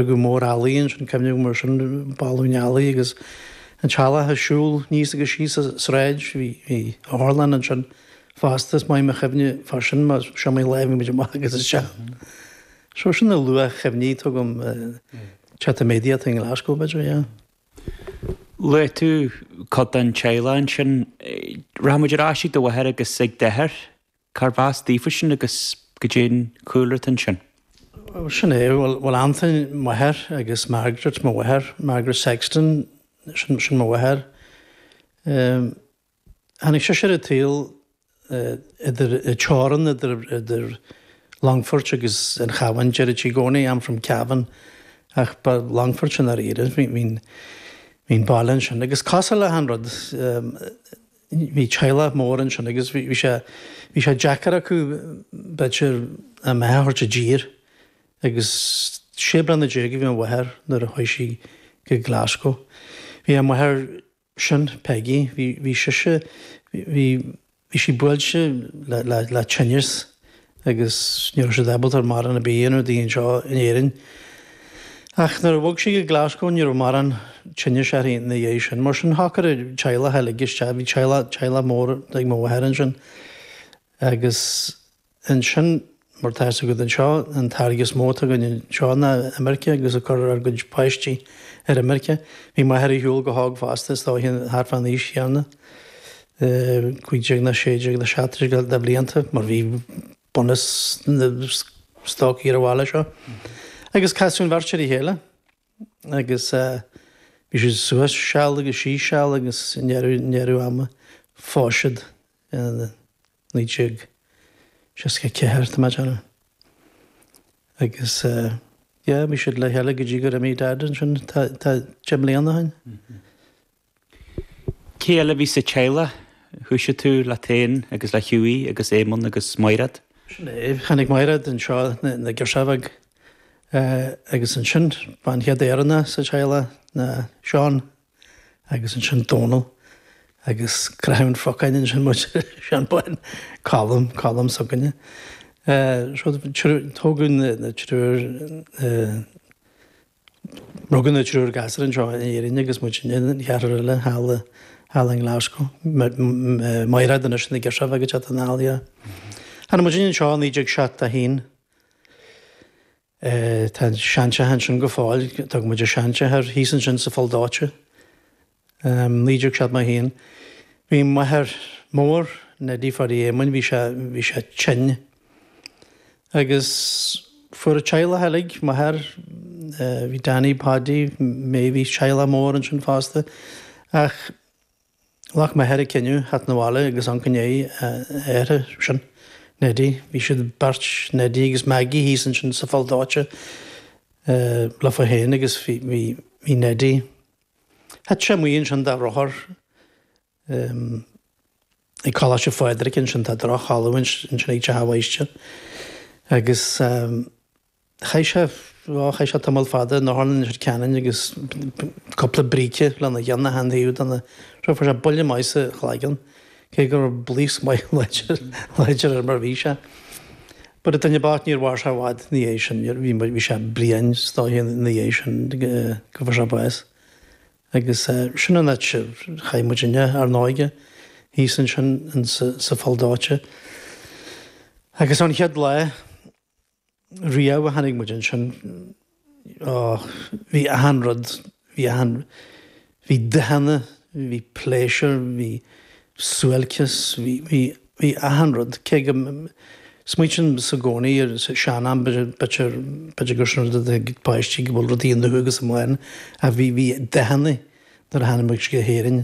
go mór, ealaí ansin, cuimhní, mar sin, balúin ealaí agus an teaghlach ag siúl aníos agus síos an tsráid. Bhí otharlann ansin fosta, is maith mo chuimhne fá sin, mar is iomaí lá a bhí muid amach agus isteach. So sin na luath-chuimhní atá agam, Chat Immediate i nGlasgow, b'fhéidir, yeah. Luaigh tú cuid den teaghlach ansin. Rachaidh muid ar ais ag do mháthair agus ag d'athair. Cárbh as daofa sin agus goidé'n cúlra atá ansin? Sin é, bhuel, Antain, m'athair, agus Margaret, mo mháthair, Margaret Sexton, sin mo mháthair. Tháinig sise ar an tsaol idir, an teorainn idir Longfort agus an Chabhán, deireadh sí i gcónaí I'm from Cavan, ach ba Longfort i ndáiríre a bhí an baile ansin, agus cosúil le achan rud, Bhí teaghlach mór ansin agus bhí sé, bhí sé deacair acu, b'fhéidir, a mbeatha a thabhairt i dtír. Agus sé bliana déag a bhí mo mháthair nuair a chuaigh sí go Glasgow. Bhí a máthair sin, Peggy, bhí, bhí sise, bhí, bhí sí buailte le, le, le tinneas. agus ní raibh siad ábalta mórán ar bith a dhéanamh di anseo in Éirinn. Ach nuair a bhog sí go Glasgow, ní raibh mórán tinnis uirthi ina dhiaidh sin. Mar sin, shocair an teaghlach uilig isteach, bhí teaghlach, teaghlach mór ag mo mháthair ansin. Agus ansin, mar atá fhios agat anseo, an táirge is mó atá againn anseo ná imirce agus ag cur ár gcuid páistí ar imirce. Bhí m'athair ar shiúl go hóg fosta, is dóiche thart fán aois chéanna. 15 nó 16 nó 17 de bhlianta, mar bhí bunús na stócaigh ar an bhaile seo, agus casadh an bheirt ar a chéile, agus bhí siad suas seal agus síos seal, agus i ndeireadh ama, phós siad i 1964, tá mé ag déanamh. Agus, yeah, bhí siad le chéile go dtí gur imigh Dad ansin, tá deich mbliana ó shin. Cé eile a bhí sa teaghlach? Thoisigh tú leat féin agus le Hughie agus Éamonn agus Maighread. Sin é. Tháinig Maighread anseo, ina girseach bheag. Agus ansin, ba an chéad Éireannach sa teaghlach ná Seán. Agus ansin Dónall. Agus craitheadh an phocáin ansin muid, Seán Bán, Colm, Colm s'againne. Tógadh na triúr, Rugadh an triúr gasúr anseo in Éirinn agus muidinne, an ceathrar eile thall i, thall i nGlasgow. Mairéad anois ina girseach bheag ag teacht 'na bhaile. Tháinig muidinne anseo i 1971. Tá an seanteach ansin go fóill, d'fhág muid an seanteach thíos ansin sa Pholl Dóite. 1971. Bhí m'athair mór Neidí Feardaí Éamoinn, bhí sé, bhí sé tinn. Agus fuair an teaghlach uilig, m'athair, bhí Danny, Paudie, May, bhí teaghlach mór ansin fosta. Ach ghlac m'athair an cinneadh theacht 'na bhaile agus amharc i ndiaidh a athairsean, Neidí. Bhí siad, beirt, Neidí agus Maggie, thíos ansin sa Pholl Dóite leofa féin agus bhí, bhí, bhí Neidí. Thit sé amuigh ansin de rothar ag Coláiste Phádraig ansin, tá drochmhalaidh ansin ag teach an mháistir. Agus chaith sé, á, chaith sé tamall fada in Otharlann Leitir Ceanainn agus cúpla bríce lena cheann achan taobh dena, fuair sé buille maith sa chloigeann. cé go raibh blaosc maith láidir air mar bhí sé. But an duine bocht níor mhair sé i bhfad ina dhiaidh sin, níor, bhí, bhí sé bliain is dóiche ina dhiaidh sin go, go fuair sé bás. Agus sin an áit ar chaith muidinne, ár n-óige, thíos ansin in sa, sa Pholl Dóite. Agus ón chéad lá. riamh a tháinig muid ansin, á, bhí achan rud, bhí achan, bhí dathanna, bhí pléisiúr, bhí suáilceas, bhí, bhí, bhí achan rud. Cé go, smaoitímsa i gcónaí ar an sean-am, b'fhéidir, b'fhéidir gur sin an rud a d'fhág páistí go bhfuil rudaí iontu agus amuigh ann, ach bhí, bhí dathanna nuair a tháinig muid go hÉirinn.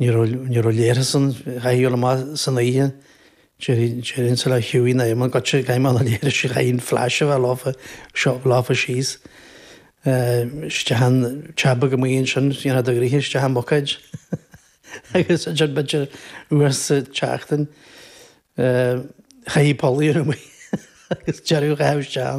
Ní raibh leithreas ann, chaithfeá ghoil amach san oíche, déarfainn sula chuaigh in aomadh goitse i gcaighdeán na leithrisí chaithfí flash a bheith leofa, a thabhairt leofa síos. isteach in teach beag amuigh ansin dhéanfá do ghnoithe isteach i mbucáid agus ansin b'fhéidir uair sa tseachtain chaithfí poll a ghearradh amuigh agus deireadh a chaitheamh isteach ann.